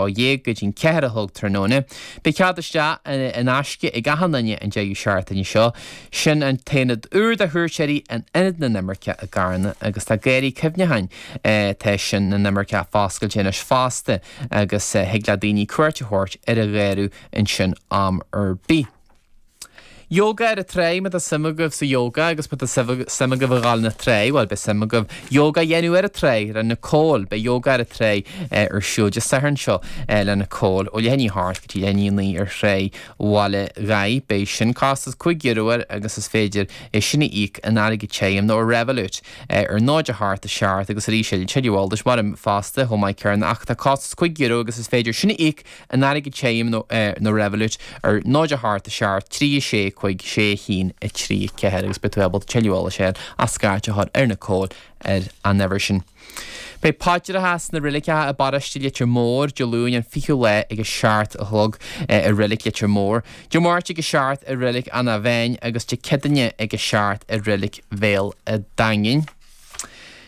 ó dhéag go dtí an ceathair a chlog tráthnóna. Beidh cead isteach in aisce ag achan duine an deireadh seachtaine seo. Sin an t-aonad úr do chuairteoirí in Ionad na nImirceach i gCarna agus tá Garraí Cuimhneacháin tá sin na nImirceach foscailte anois fosta agus thig le daoine cuairt a thabhairt ar an gharradh ansin am ar bith. Yoga ar an trá, má tá suim agaibh sa yoga agus má tá suim agaibh a ghabháil na trá, bhuel beidh suim agaibh yoga a dhéanamh ar an trá le Nicole. Beidh yoga ar an trá ar siúl Dé Sathairn seo le Nicole ó leath i ndiaidh a hocht go dtí leath i ndiaidh a naoi ar Thrá Bhaile Ghaigh. Beidh sin costas cúig euro air agus is féidir é sin a íoc in airgead tirim nó ar Revolut ar náid a hocht a seacht agus arís tuilleadh eolais mar im fosta chomh maith céarna ach tá costas cúig euro agus is féidir sin a íoc In airgead tirim nó ar Revolut ar 0 8 7 3 6 5 6 1 3 4 agus beidh tú ábalta tuilleadh eolais a fháil ach scairt a chur ar Nicole ar an uimhir sin. Beidh paidreacha sna reiligeacha i bparóiste Leitir Móir Dé Luain an 20ú lá ag a seacht a chlog i Reilig Leitir Móir, Dé Máirt ag a seacht i Reilig Eanach Mheáin agus Dé Céadaoine ag a seacht i Reilig Bhéal a' Daingin.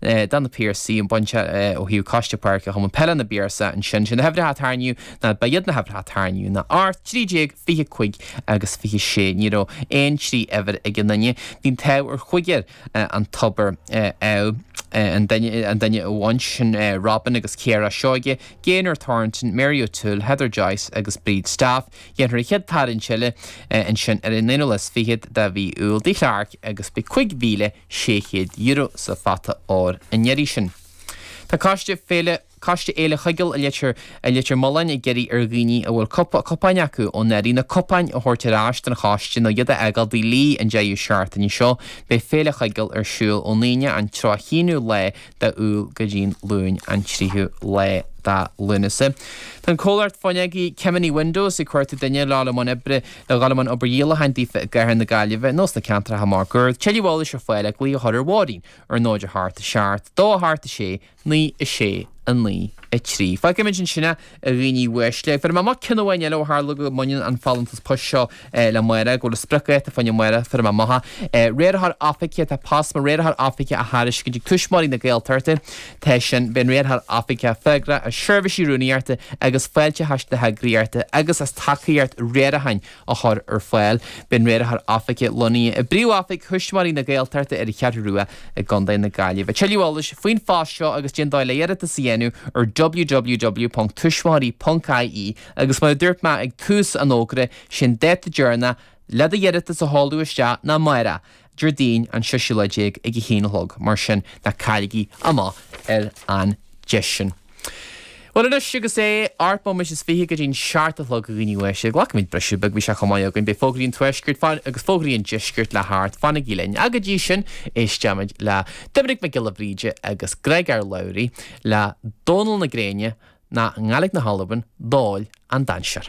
D'fhan na Piarsaigh an bainte ó thaobh Coiste Páirce Chumann Peile na bPiarsach ansin. Sé na huimhreacha a tarraingíodh ná, ba iad na huimhreacha a tarraingíodh ná, 13, 20, 5 agus 26. Ní raibh aon trí uimhir ag aon duine. Bhí an t-ádh ar chúigear an tobar, ádh an duine amháin, sin Robin agus Ciara Seoige, Gaynor Thornton, Mary O'Toole, Heather Joyce agus Bríd Staff. Déanfar an chéad tarraingt eile ansin ar an aonú lá is fichead de mhí Iúil. Tigh Chlarke agus beidh cúig mhíle. €600 sa phota óir an iarraidh sin. Tá coiste féile Coiste Fhéile Chuigéil i Leitir i Leitir Mealláin ag iarraidh ar dhaoine a bhfuil cupa cupáin acu ó anuraidh na cupáin a thabhairt ar ais don choiste nó iad a fhágáil Tigh Lee an deireadh seachtaine seo beidh Féile Chuigéil ar siúl ón Aoine an tríocha haonú lá de Iúil go dtí'n Luain an tríú lá de Lúnasa. Tá an comhlacht fuinneog Kemany Windows ag cuartú duine le dul i mbun oibre A dhul i mbun obair dhíolacháin daofa i gCathair na Gaillimhe nó sna ceantracha máguaird, tuilleadh eolais ar fáil ach glaoch a chur ar Mháirín, ar 0 8 7 2 8 6 9 6 9 3. Fágfaimid ansin é, a dhaoine uaisle, bhéarfaidh mé amach cionn amháin eile ó tharla go mbaineann an folúntas poist seo le amárach, go bhfuil a spriocdháta faoi amárach, bhéarfaidh mé amach é, Riarthóir Oifige, tá post mar Riarthóir Oifige á thairiscint ag Tuismitheoirí na Gaeltachta, Tá sin, beidh an riarthóir oifige freagrach as seirbhísí rúnaíochta agus fáilteachais na heagraíochta agus as tacaíocht riaracháin a chur ar fáil. Beidh an riarthóir oifige lonnaithe i bpríomhoifig Thuismitheoirí na Gaeltachta ar an Cheathrú Rua i gContae na Gaillimhe. Tuilleadh eolais faoin phost seo agus caidé an dóigh le d'iarratas a dhéanamh ar www.tuismitheoirí.ie agus mar a dúirt mé ag tús an fhógra, sé an dáta deireanach le do iarratas a sheoladh isteach ná amárach. Déardaoin an séú lá déag ag a haon a chlog, mar sin ná cailligí amach ar an deis sin. Bhuel anois agus é ocht mbomaite is fiche go dtí an seacht a chlog againn uaidh sin, glacfaimid briseadh beag, bheadh sé chomh maith againn, beidh fógraí an tuaiscirt agus fógraí an deiscirt le theacht, fanaigí linn. Ach go dtí sin éisteimid le Doimnic Mac Giolla Bhríde agus Griogair Labhruidh le Dónal na Gréine nó i nGaeilge na hAlban, Dòmhnall an Dannsair.